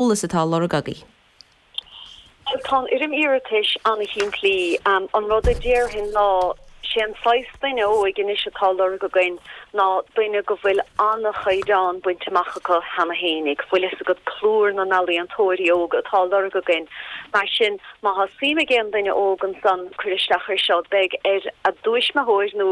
eolas atá á lorg agaibh. Bhuel, tá an fhoirm iarratais an-shimplí. An rud a déarfainn ná, sé an saghas duine óig anois atá á lorg againn ná duine go bhfuil an-chaighdeán bainte amach acu cheana fhéinig, bhfuil fhios agat, plúr na n-ealaíontóirí óga atá á lorg againn. Mar sin. Má tá suim ag aon duine óg ansan cuir isteach ar seo, beidh ar a dtuismitheoir nó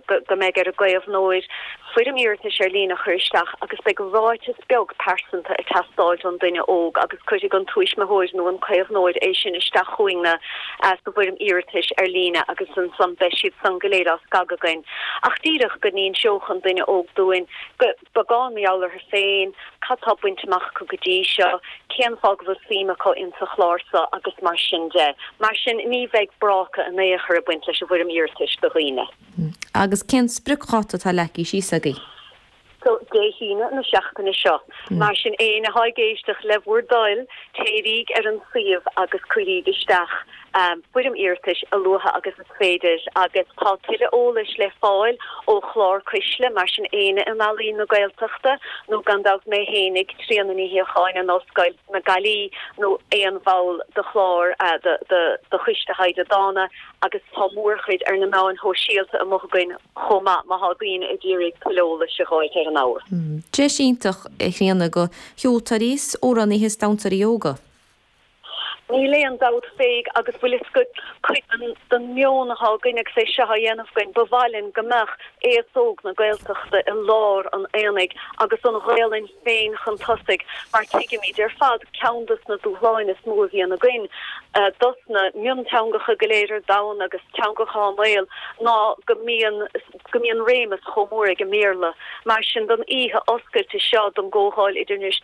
beidh ar a gcaomhnóir foirm iarratais ar líne a chur isteach agus beidh ráiteas beag pearsanta ag teastáil ón duine óg agus cuirfidh an tuismitheoir nó an caomhnóir é sin isteach chugainne sa bhfoirm iarratais ar líne agus ansan beidh siad san go léir á scagadh againn. Ach díreach go n-inseodh an duine óg dúinn go beagán mar gheall orthu féin, cad tá bainte amach acu go dtí seo, cén fáth go bhfuil suim acu ins an chlár so agus mar sin de. Mar sin ní bheidh bráca in aon chor ag baint leis an bhfoirm iarratais do dhaoine. Agus cén spriocdháta atá leagtha síos agaibh? So, Dé hAoine na seachtaine seo. Mar sin éinne atá ag éisteacht, le bhur dtoil, téiríg ar an suíomh agus cuiríg isteach an foirm iarratais a luaithe agus is féidir agus tá tuilleadh eolais le fáil ó chlár Cuisle, mar sin éinne in Ealaín na Gaeltachta nó gan dabht mé fhéinig, Tríona Ní Shíocháin in Ollscoil na Gaillimhe nó aon bhall de chlár, de Choiste Taighde Dána agus tá mórchuid ar na meáin shóisialta amuigh againn chomh maith má thá daoine ag iarraidh tuilleadh eolais a ghabháilt ar an ábhar. Deis iontach, a Thríona, go cheoltóirí 's amhránaithe 's damhsóirí óga. Níl aon dabht faoi agus bhfuil fhios againn cuid den meon atá againn agus é seo á dhéanamh againn, ba mhaith linn go mbeadh aos óg na Gaeltachta i lár an aonaigh agus an Ghaolainn féin chun tosaigh mar tuigimíd ar fad ceann dos na dúshláin is mó a bhíonn againn dos na mionteangacha go léir ar domhan agus teangacha i mbaol ná go mbíonn go mbíonn réimeas chomh mór ag an mBéarla. Mar sin don oíche oscailte seo don gComhdháil idirnáis.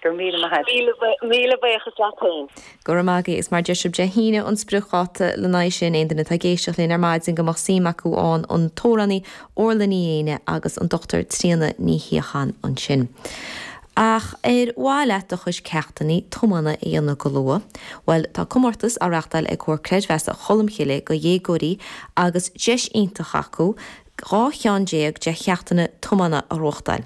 Go raibh míle maith agat. Míle buíochas leat féin. Go raibh maith agat. Is mar a deir sí, Dé hAoine an spriocdháta le haghaidh sin. Aon duine atá ag éisteacht linn ar maidin go mbeadh suim acu ann, an t-amhránaí Orla Ní Fhéinne agus an Dr. Tríona Ní Shíocháin ansin. Ach ar mhaith leat do chuid ceachtannaí tiomána a dhéanamh go luath? Bhuel, tá comórtas á reachtáil ag Comhar Creidmheasa Cholmcille do dhéagóirí agus deis iontach acu, dhá cheann déag de cheachtanna tiomána a reáchtáil.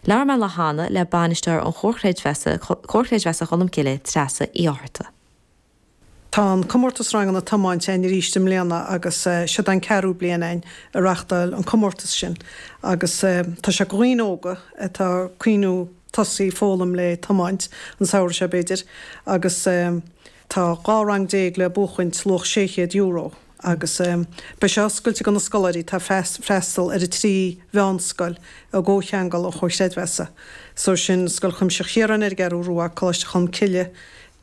Labhair mé ar ball, le Bainisteoir an Chomhar Chreidmheasa, Comhar Creidmheasa Cholm Cille, Treasa Uí Fhátharta. Tá an comórtas ranganna tiomáint a'inn arís i mbliana agus seod an ceathrú bliain a'inn a reachtáil an comórtas sin agus tá sé go dhaoine óga atá ag cuimhniú tosaí ag foghlaim le tiomáint an samhradh seo b'fhéidir agus tá dhá rang déag le buachaint luach 600 euro. Agus é beidh sé oscailt ag na scoláirí tá freastal ar a trí mheánscoil i gcomhcheangal an Chomhar Chreidmheasa. So sin Scoil Chuimsitheach Chiaráin ar an gCeathrú Rua, Coláiste Cholm Cille,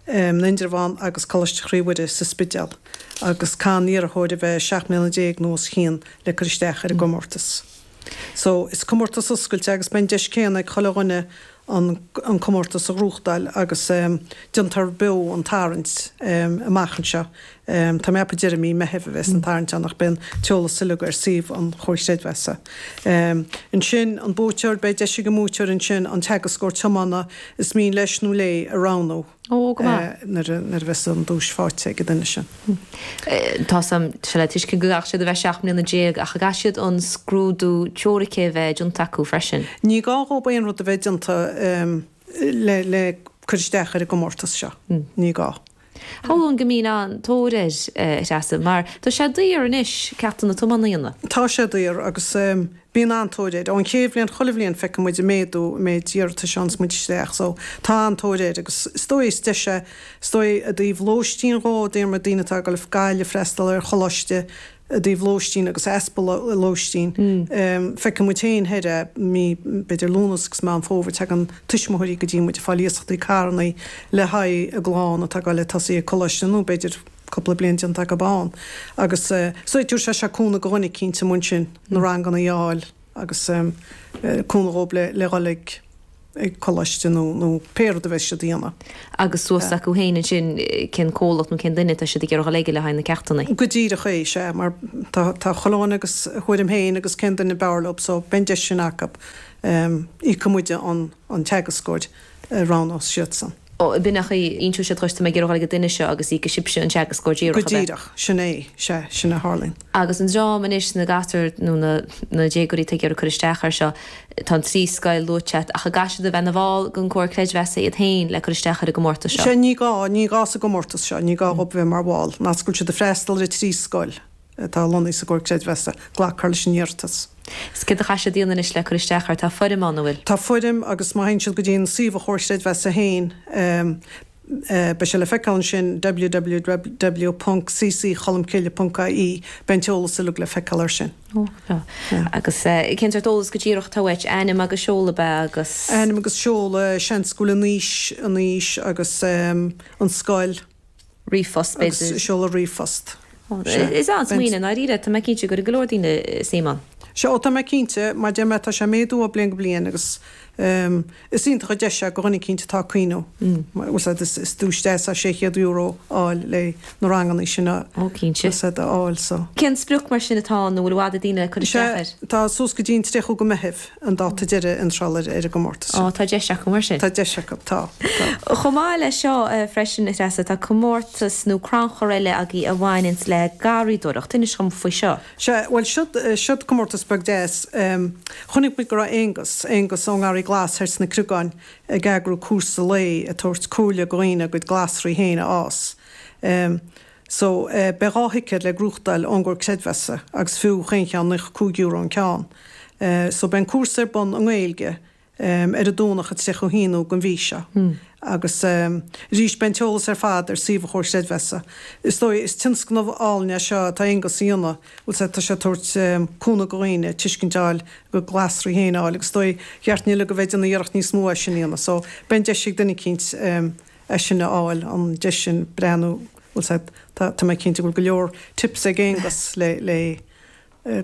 in Indreabhán agus Coláiste Chroí Mhuire sa Spidéal. Agus caithfidh an t-iarrthóir a bheith 17 mbliana nó os a chionn le cur isteach ar an gcomórtas. So, is comórtas oscailte agus beidh an deis céanna ag chuile dhuine an comórtas a ghnóthachtáil agus déanfar beo an tarraingt amach anseo. Tá mé ag ceapadh deireadh mí Meithimh a bhéas an tarraingt ann ach beidh an t-eolas uilig ar suíomh an Chomhar Chreidmheasa. Ansin, an buaiteoir, beidh deis ag an mbuaiteoir ansin an teagascóir tiomána is mian leis nó léi a roghnú. Ó, go maith. nuair a bheas an duais faighte ag an duine sin. Tá sin le tuiscint go gcaithfidh siad a bheith seacht mbliana déag ach an gcaithfidh siad an scrúdú teoirice a bheith déanta acu freisin? Ní gá dhóibh aon rud a bheith déanta le cur isteach ar an gcomórtas seo. Ní gá. Shamhlóinn go mbíonn an-tóir air, a Threasa, mar tá sé daor anois, ceachtanna tiomána a dhéanamh. Tá sé daor agus Bíonn an-tóir air. Ón chéad bhliain chuile bhliain feicimid an méadú an méid iarratais a fhaigheanns muid isteach so tá an-tóir air agus is dóigh is deis é is dóigh i dtaobh lóistín de, daoine atá ag dul go Gaillimh ag freastal ar choláiste i dtaobh lóistín agus easpa lóistín. Feiceann muid féin thart ar mí, b'fhéidir Lúnas agus Meán Fómhair tagann tuismitheoirí go dtí muid ag fáil iasachtaí carrannaí le haghaidh a gclann atá ag dul ag tosú ag coláiste nó b'fhéidir, cupla bliain déanta acu ann agus so tabharfaidh sé seo cúnamh go dhuine eicínt amuigh ansin na ranganna a fháil agus cúnamh dhób le dhul ag coláiste nó nó pé rud a bheas siad a dhéanamh. Agus suas acu féin ansin cén comhlacht nó cén duine atá siad ag iarraidh dhul aige le haghaidh na ceachtannaí. Go díreach é, sea, mar tá chaon duine agus a thuairim féin agus cén duine a b'fhearr leob so beidh an deis sin acu, íocfaidh muide an. an teagascóir a roghnós siadsan. Ó, tuigim, so, ínseoidh siad dhuit tá mé ag iarraidh dhul ag an duine seo agus íocfaidh sibhse an teagascóir díreach, ab ea? Go díreach, sin é, sea, sin a tharlaíonn. Agus an dream anois, na gasúir nó na, na déagóirí atá ag iarraidh cur isteach air seo, tá an trí scoil luaite a't, ach a gcaithfidh siad a bheith 'na bhall den Comhar Creidmheasa iad féin le cur isteach ar an gcomórtas seo? Sea, ní gá, ní gá sa gcomórtas seo, ní gá dhób a bheith mar bhall, má tá siad ag freastal ar an trí scoil. atá lonnaithe sa gComhar Creidmheasa, glacfar leis an iarratas. So céard a chaithfidh siad a dhéanamh anois le cur isteach air? Tá foirm ann, an bhfuil. Tá foirm agus má théann siad go dtí an suíomh an Chomhar Creidmheasa féin beidh sé le feiceáil ansin, www.cccholmcille.ie, beidh an t-eolas uilig le feiceáil air sin. Ó, go breá. Agus cén sort eolas go díreach atá uait? Ainm agus seoladh, ab ea, agus. Ainm agus seoladh, seans go bhfuil an aois, an aois agus an scoil. ríomhphost b'fhéidir. Agus seoladh ríomhphost. Sea. Is é an smaoineamh i ndáiríre, tá mé cinnte gur ag go leor daoine, suim ann. Sea, ó tá mé cinnte, mar deir mé tá sé ag méadú ó bliain go bliain agus is iontach an deis é go dhuine eicínt atá ag cuimhniú. Bhuel sea is is duais deas é €600 a fháil le na ranganna sin a Ó cinnte. sin a fháil so. Cén sprioc mar sin atá ann nó bhfuil i bhfad ag daoine cur isteach air? Sea, tá suas go dtí an 30ú go Meitheamh. an dáta deiridh iontrála ar an gcomórtas Á, seo. tá deis acu mar sin. Tá deis acu, tá, tá. Chomh maith le seo freisin, a Threasa, tá comórtas nó crannchur eile agaí a bhaineanns le garraíodóireacht. Inis dhom faoi seo. Sea, bhuel, siod, siod comórtas beag deas. Chonaic muid go raibh Aonghus, Aonghus ón nGarraí Glas thoir sna Creagáin ag eagrú cúrsa lae ag tabhairt comhairle go dhaoine a gcuid glasraí féin a fhás. So, eh, beidh dhá thicéad le gnóthachtáil ón gComhar Creidmheasa agus fiú chaon cheann nócha cúig euro an ceann. Eh, so beidh an cúrsa ar bun i nGaeilge, em, ar an Domhnach an tríocha haonú gon mhí seo. Agus, em, arís beidh an t-eolas ar fad ar suíomh an Chomhar Creidmheasa. Is dóigh, is tionscnamh álainn é seo atá Aonghus a dhéanamh, bhfuil sé, tá sé ag tabhairt, em, cúnamh do dhaoine tuiscint a fháil go glasraí féin a fháil agus is dóigh, cheart dúinn uilig a bheith ag déanamh iarracht níos mó é sin a dhéanamh. So, beidh an deis ag duine eicínt, em, é sin a fháil, an deis sin breathnú, bhuel sea, tá mé cinnte go bhfuil go leor tips ag Aonghus le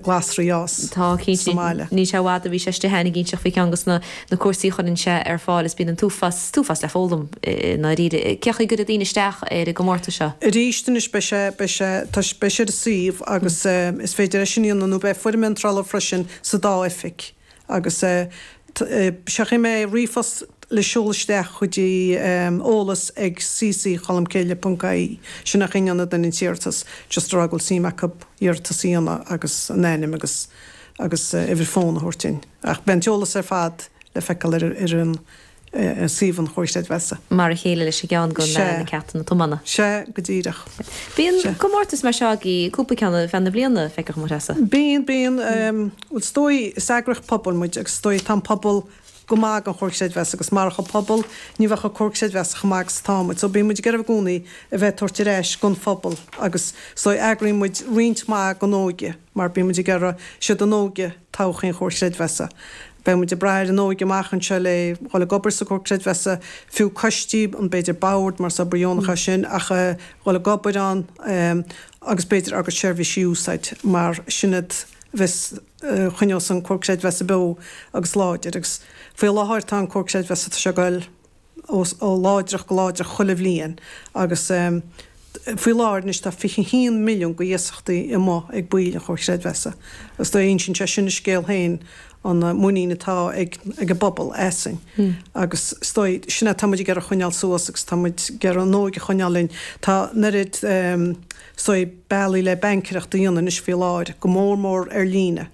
glasraí a fhás Tá, cinnte. sa mbaile. Níl sé i bhfad ó bhí sé istigh ann ag inseacht faoi cheann dos na cúrsaí a chuireann sé ar fáil is bíonn an t-uafás, t-uafás le foghlaim i ndáiríre. Cén chaoi a gcuirfidh daoine isteach ar an gcomórtas seo? Arís, anois beidh sé, beidh sé, tá sé, beidh sé ar an suíomh agus is féidir é sin a dhéanamh nó beidh foirm iontrála freisin sa dá oifig. Agus eh, sé an chaoi a mbeidh ríomhphost le seoladh isteach go dtí eh, eolas ag cc cholmcille.ie, sin an chaoi a ndéanann an t-iarratas, just a rá go bhfuil suim acu iarratas a dhéanamh agus a n-ainm agus agus eh, uimhir fón a thabhairt dúinn. Ach beidh an t-eolas ar fad le feiceáil ar ar an. ar suíomh an Chomhar Creidmheasa. Mar a chéile leis an gceann go na ceachtanna tiomána. Sea go díreach. Bíonn comórtais mar seo agaí cúpla ceann ar feadh na bliana feictear dhomsa. Bíonn, bíonn. Bhuel is dóigh, is eagraíocht pobail muid agus is dóigh tá an pobal go maith gon Chomhar Creidmheasa agus marach an pobal ní bheadh an Comhar Creidmheasa chomh maith agus atá muid. So bíonn muid ag iarraidh i gcónaí a bheith ag tabhairt ar ais gon phobal agus so eagraíonn muid roinnt maith gon óige mar bíonn muid ag iarraidh, siad an óige, todhchaí an Chomhar Creidmheasa. Beidh muid ag braith ar an óige amach anseo le dhul ag obair sa Chomhar Creidmheasa, fiú coistí, b'fhéidir Boird mar is obair dheonach é sin, ach dhul ag obair ann agus b'fhéidir ár gcuid seirbhísí a úsáid mar sin é a bheas choinneos an Comhar Creidmheasa beo agus láidir agus faoi láthair tá an Comhar Creidmheasa, tá sé ag dul. ó láidreacht go láidreacht chuile bhliain agus faoi láthair anois tá 21 milliún go iasachtaí amuigh ag baill an Chomhar Chreidmheasa agus is dóigh insíonn sé sin a scéal féin an muinín atá ag ag an bpobal asainn agus is dóigh sin é tá muid ag iarraidh choinneáil suas agus tá muid ag iarraidh an óige a choinneáil linn. Tá an oiread is dóigh bealaí le baincéireacht a dhéanamh anois faoi láthair go mór mór ar líne.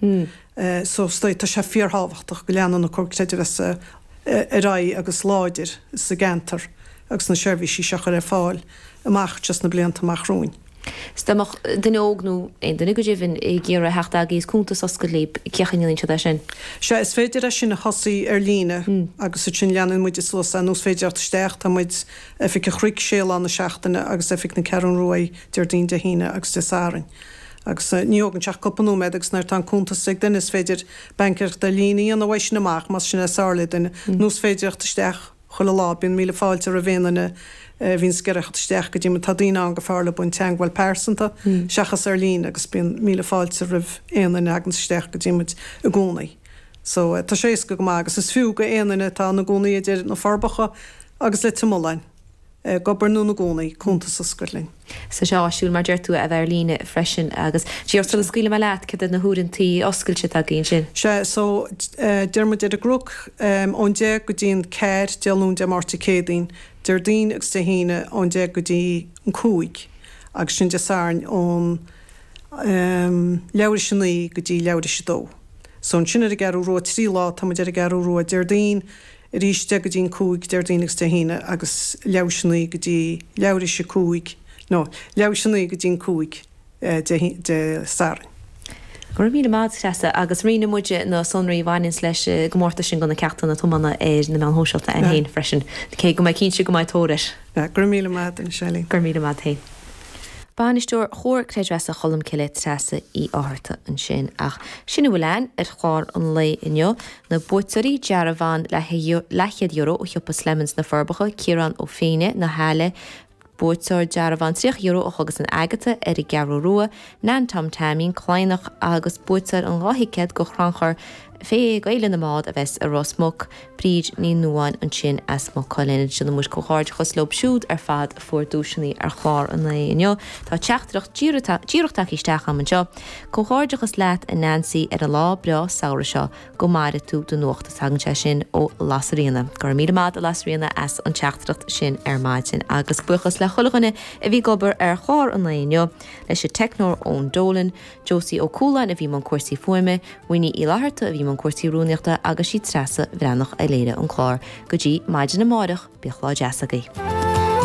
So is dóigh tá sé fíor-thábhachtach go leanann an Comhar Creidmheasa ar aghaidh agus láidir sa gceantar agus na seirbhísí seo a chur ar fáil amach anseo sna blianta amach romhainn. 'S dá mbeadh duine óg nó aon duine go deimhin ag iarraidh a theacht agaibh is cuntas a oscailt libh, cén chaoi a ndéanann siad é sin? Sea, is féidir é sin a thosaí ar líne agus ansin leanann muid é suas, nó is féidir theacht isteach, tá muid, Oifig an Chnoic, sé lá na seachtaine agus Oifig na Ceathrún Rua Déardaoin, Dé hAoine agus Dé Sathairn. Agus ní thógann sé ach cúpla nóiméad agus nuair atá an cuntas ag duine is féidir baincéireacht ar líne a dhéanamh uaidh sin amach, más sin é is fearr le duine. Nó is féidir theacht isteach chuile lá, bíonn míle fáilte roimh aon duine a bhíonns ag iarraidh theacht isteach go dtí muid. Tá daoine ann gur fearr leob an teangmháil pearsanta seachas ar líne agus bíonn míle fáilte roimh aon duine a thaganns isteach go dtí muid i gcónaí. So tá sé éasca go maith agus is fiú go aon duine atá ina gcónaí idir Na Forbacha agus Leitir Mealláin. ag obair nó ina gcónaí, cuntas a oscailt linn. Tá sé áisiúil mar deir tú a bheith ar líne freisin agus díreach sula scaoileann mé leat cad iad na huaireantaí oscailte atá agaibh ansin? Sea so deir muid ar an gCnoc ón deich go dtí an ceathair Dé Luain Dé Máirt Dé Céadaoin Déardaoin agus Dé hAoine ón deich go dtí an cúig agus ansin Dé Sathairn ón leathuair tar éis a naoi go dtí leathuair tar éis a dó so ansin ar an gCeathrú Rua trí lá tá muid ar an gCeathrú Rua Déardaoin arís deich go dtí an cúig Déardaoin agus Dé hAoine agus leathuair tar éis a naoi go dtí leathuair tar éis a cúig nó leathuair tar éis a naoi go dtí an cúig Dé Sathairn. Go raibh míle maith agat Treasa agus roinnfidh muide na sonraí a bhaineanns leis an gcomórtas sin go na ceachtanna atá mana ar na meáin shóisialta againn féin freisin cé go mbeinn cinnte go mbeidh tóir air. Go raibh míle maith agat a Shailí. Go raibh míle maith agat féin. Bainisteoir Chomhar Creidmheasa Cholmcille Treasa Uí Fhátharta ansin ach sin a bhfuil againn ar chlár an lae inniu. Na buaiteoirí, Dearbhán leathchéad euro ó shiopa Slemons, Na Forbacha, Ciarán Ó Féinne, Na hAille, buaiteoir dearbhán tríocha euro ó Chógaslann Agata ar an gCeathrú Rua, Nan Tom Teaimín, Cladhnach, agus buaiteoir an dhá thicéad go chrannchur Féile na mBád a bheas i Ros Muc, Bríd Ní Nuáin ansin as Maigh Cuilinn. Déanann muid comhghairdeachas leo siúd ar fad a fuair duaiseanna ar chlár an lae inniu. Tá teachtaireacht díreach tagtha isteach agam anseo. Comhghairdeachas leat a Nancy ar an lá breá samhraidh seo go maire tú do nuacht tagann sé sin ó Lasairfhíona. Go raibh míle maith ag Lasairfhíona as an teachtaireacht sin ar maidin agus buíochas le chuile dhuine a bhí ag obair ar chlár an lae inniu, leis an teicneoir Eoin Dolan, Josie Ó Cualáin a bhí i mbun cúrsaí fuaime, Winnie Uí Fhlatharta a bhí i mbun cúrsaí rúnaíochta agus sí Treasa Bhreathnach a léirigh an clár. Go dtí maidin amáireach, bíodh lá deas agaibh.